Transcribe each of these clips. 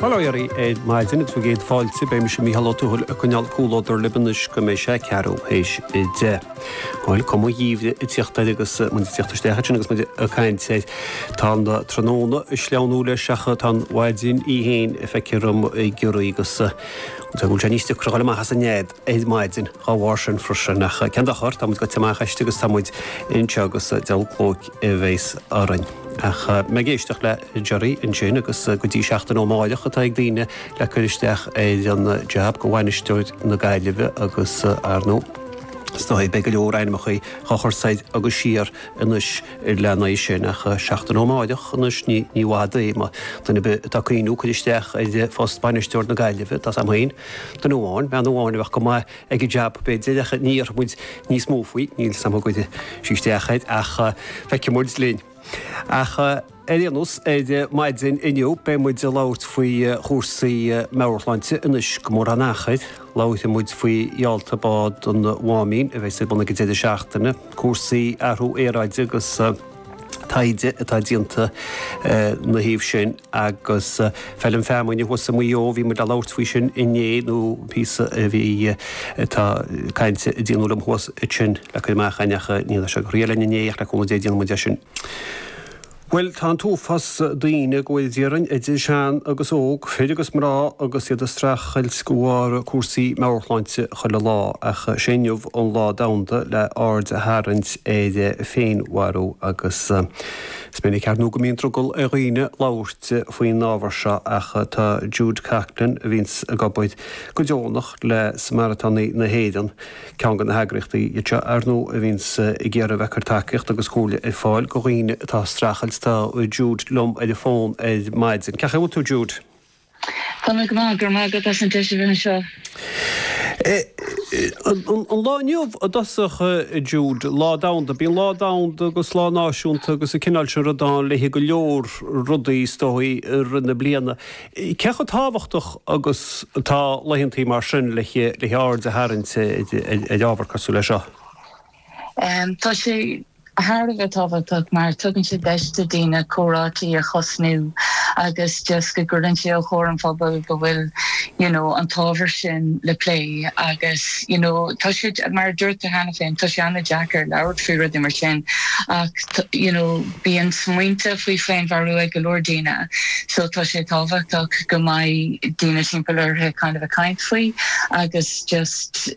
Bail ó Dhia oraibh ar maidin agus bhur gcéad fáilte. Beidh mise, Mícheál Ó Tuathail, ag coinneáil comhluadar libh anois go mbeidh sé a ceathrú théis a deich. Bhuel, cuma an gheimhridh ag teacht air agus muid ag teacht isteach air sin agus muid ag caint air. Tá an tráthnóna ag sleamhnú leis ach tá an mhaidin í fhéin feictear dhom ag giorrú agus is dóigh go bhfuil sé níos deacra a ghoil amach as an nead. ar maidin. Dhá bharr sin freisin. Ach cén dochar, tá muid gaibhte amach aisti agus tá muid anseo agus diabhal clóic a bheas orainn. Ach bhí mé ag éisteacht le Gerry ansin agus go dtí seachtain ó amáireach atá ag daoine le cur isteach ar an jab go bhainisteoir na Gaillimhe agus, ar ndóigh, is dóigh, beidh go leor ainmeachaí dhá chur soir agus siar anois lena aghaidh sin. Ach seachtain ó amáireach anois ní bhfad é. Más duine ar bith atá ag cuimhniú cur isteach ar phost bainisteoir na Gaillimhe, tá a fhios agam féin, Duine amháin, bean amháin a bheadh go maith ag an jab, b'fhéidir, ach ní dhéarfaidh muid níos mó faoi, níl a fhios agam an gcuirfidh sí isteach air, ach feicfidh muid linn. Ach ar aon nós, ar maidin inniu beidh muid ag labhairt faoi chúrsaí meabhairshláinte, anois gan mórán achair, labharfaidh muid faoi gheallta bád an Mháimín a bheas ar bun ag an deireadh seachtaine, cúrsaí athrú aeráide agus. taighde atá déanta ina thaobh sin agus Feilm Feamuinne thuas i Muigh Eo, bhí muid a' labhairt faoi sin inné nó píosa a bhí, tá cainte a déanadh liom thuas ansin le cur amach ann ach ní raibh sé ag éirí linn inné ach le cúnamh Dé déanfaidh muid é sin. Bhuel tá an t-uafás daoine ar fud Éireann, idir shean agus óg, fir agus mná agus iad a' streachailt go bharr cúrsaí meabhairshláinte chuile lá ach sé inniu an Lá Domhanda le aird a tharraingt ar féinmharú agus is minic, ar ndóigh, go mbíonn drogall ar dhaoine labhairt faoin ábhar seo ach tá Jude Coughlan, a bhíonns ag obair go deonach le Samaritánaigh na hÉireann, ceann de na heagraíochtaí iad seo, ar ndóigh, a bhíonns ag iarraidh a bheith ag cur tacaíocht agus comhairle ar fáil go dhaoine atá ag streachailt. Tá Jude liom ar an bhfón ar maidin. Cén chaoi a bhfuil tú, Jude? Tá mé go hiontach, go raibh maith agat as an deis a bheith anseo. An lá inniu i dtosach, a Jude, Lá Domhanda. Bíonn Lá Domhanda agus Lá Náisiúnta agus an cineál sin ruda ann le haghaidh go leor rudaí, is dóigh, i rith na bliana. Cé chomh tábhachtach agus atá laethantaí mar sin le haghaidh aird a tharraingt ar ábhar cosúil leis seo? Tá sé thar a bheith tábhachtach mar tugann sé deis do daoine comhráití a thosnú agus just go gcuireann sé os comhair an phobail go bhfuil you know an t-ábhar sin le plé agus you know tá sé, mar a dúirt tú cheana féin, tá sé an-deacair labhairt faoi rudaí mar sin ach you know bíonn smaointe faoi féinmharú ag go leor daoine so tá sé tábhachtach go mbeidh daoine timpeall orthu kind of a' caint faoi agus just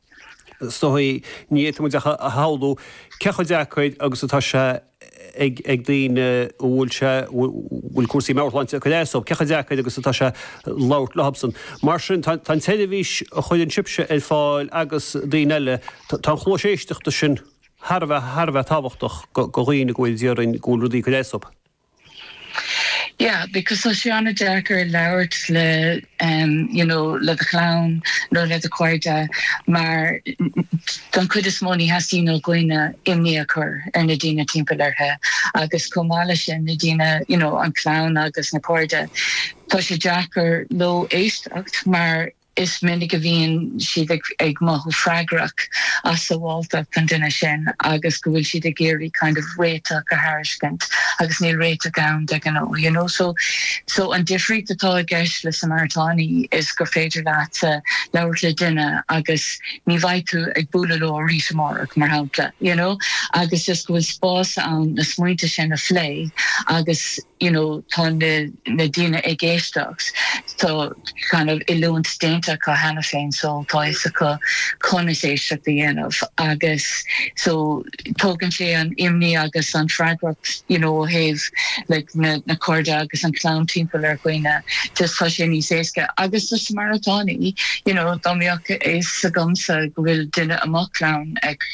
Is dócha, ní fhéadfadh muid ach a shamhlú cé chomh deacair agus atá sé ag daoine a bhfuil sé, bhfuil cúrsaí meabhairshláinte ag cur as dóibh, cé chomh deacair agus atá sé labhairt faoi seo. Mar sin, tá an tseirbhís a chuireann sibhse ar fáil agus daoine eile, tá an chluas éisteachta sin thar a bheith, thar a bheith tábhachtach do dhaoine go bhfuil, déarfainn, go bhfuil rudaí ag cur as dóibh. Yeah, because tá sé an-deacair labhairt le em you know le do chlann nó le do chairde mar don chuid is mó ní theastaíonn ó dhaoine imní a chur ar na daoine timpeall orthu agus chomh maith leis sin na daoine you know an chlann agus na cairde tá sé deacair dóibh éisteacht mar Is minic a bhíonn siad ag mothú freagrach as sabháltacht an duine sin agus go bhfuil siad ag iarraidh kind of réiteach a thairiscint agus níl réiteach ann de ghnáth, you know. So, so an difríocht atá i gceist le Samaritánaigh ná gur féidir leatsa labhairt le duine agus ní bheidh tú ag bualadh leo arís amárach, mar shampla, you know, agus just go bhfuil spás ann na smaointe sin a phlé agus. you know tá na daoine ag éisteacht tá kind of oiliúint déanta acu cheana féin so tá fhios acu conas éisteacht a dhéanamh agus so tógann sé an imní agus an freagracht you know ó thaobh like na na cairde agus an chlann timpeall ar dhaoine just tá sé níos éasca agus is Samaritánaigh you know dá mbeadh a fhios agamsa go bhfuil duine i mo chlann ag